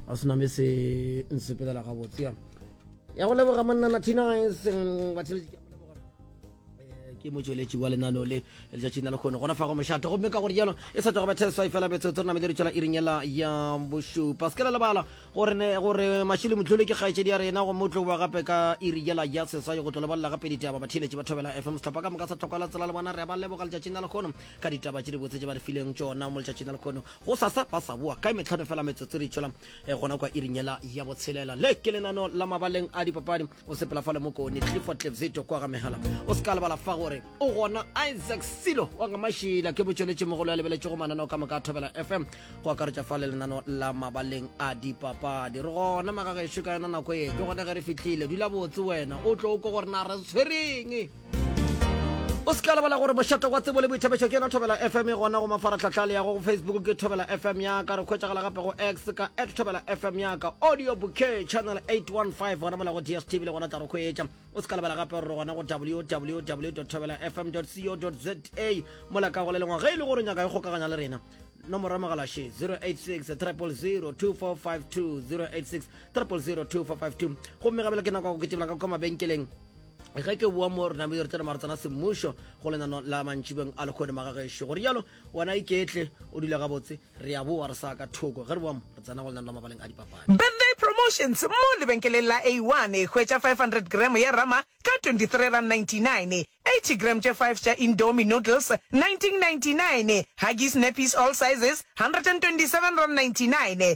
a se name se nsepelela gabotse ya ya go leboga monna nathina e seng batheledi ke eh, ke motsweletši wa lenano le letšatši na le kgone gona fa go mošato gomme ka gore jalo e sa tlogo batheswa e fela betsotso re namele retšela iring yela ya bošupa se ke la lebala gore gore mašili motlhole ke kgaetšedi ya rena gomme o tlo boa gape ka iri yela ya seswai go tlo lebalela gape ditaba batheletši ba thobela fm setlhopha ka moka sa tlhokwala tsela le bona re ba leboga letšatši na le kgono ka ditaba tše di botse tše ba re fileng tšona mo letšatši na le kgono Gosasa ba sa boa kae metlhano fela metsotso re itšwela eh, gona kwa iring yela ya botshelela le ke lenano la mabaleng a dipapadi o sepela fa le mokone clifford tlevzeto kwa ga megala o se ka lebala fa gore o gona isaac silo wa ga mašila ke botšweletše mogolo ya lebeletše go mananeo ka moka a thobela fm go akaretša fa le lenano la mabaleng a dipapadi re gona magagešo ka yona nako e ke gone ge re fitlhile dula botse wena o tlo ko gore na re tshwereng o se tla lebala gore mošate wa tsebo le boithabišo ke yona thobela fm e gona go mafaratlhatlha le yago go facebook ke thobela fm yaka re kgwetsagala gape go x ka at thobela fm yaka audio bouquet channel 815 gona mola go dstv le gona tla re kgwetša o se ka lebala gape gore gona go www thobela fm co za mola ka go le lengwa ge e le gore nyaka e kgokaganya le rena nomoro ya mogala she 086 300 2452 086 300 2452 gomme gabela ke nako ya go ketebela ka kwa mabenkeleng ge ke boa mo rena yo re tsena maro tsena semmušo go lenano la mantšibeng a lekgone magagešo go rialo wena iketle o dula gabotse re a boa re sa ka thoko ge re boa mo re tsena go lenano la mabaleng a dipapadi Birthday Promotions mo lebenkeleng la A1 e hwetša 500 gram ya rama ka R23.99, 80 gram tše 5 tša Indomie noodles R19.99, Huggies nappies all sizes R127.99,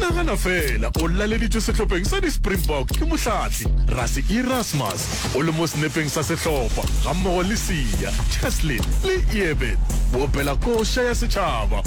nagana fela o laleditšwe sehlopheng sa di-springbok ke mohlatli rase erasmus o le mo senepeng sa sehlopha gammogo le sia cheslin le eben boopela koša ya setšhaba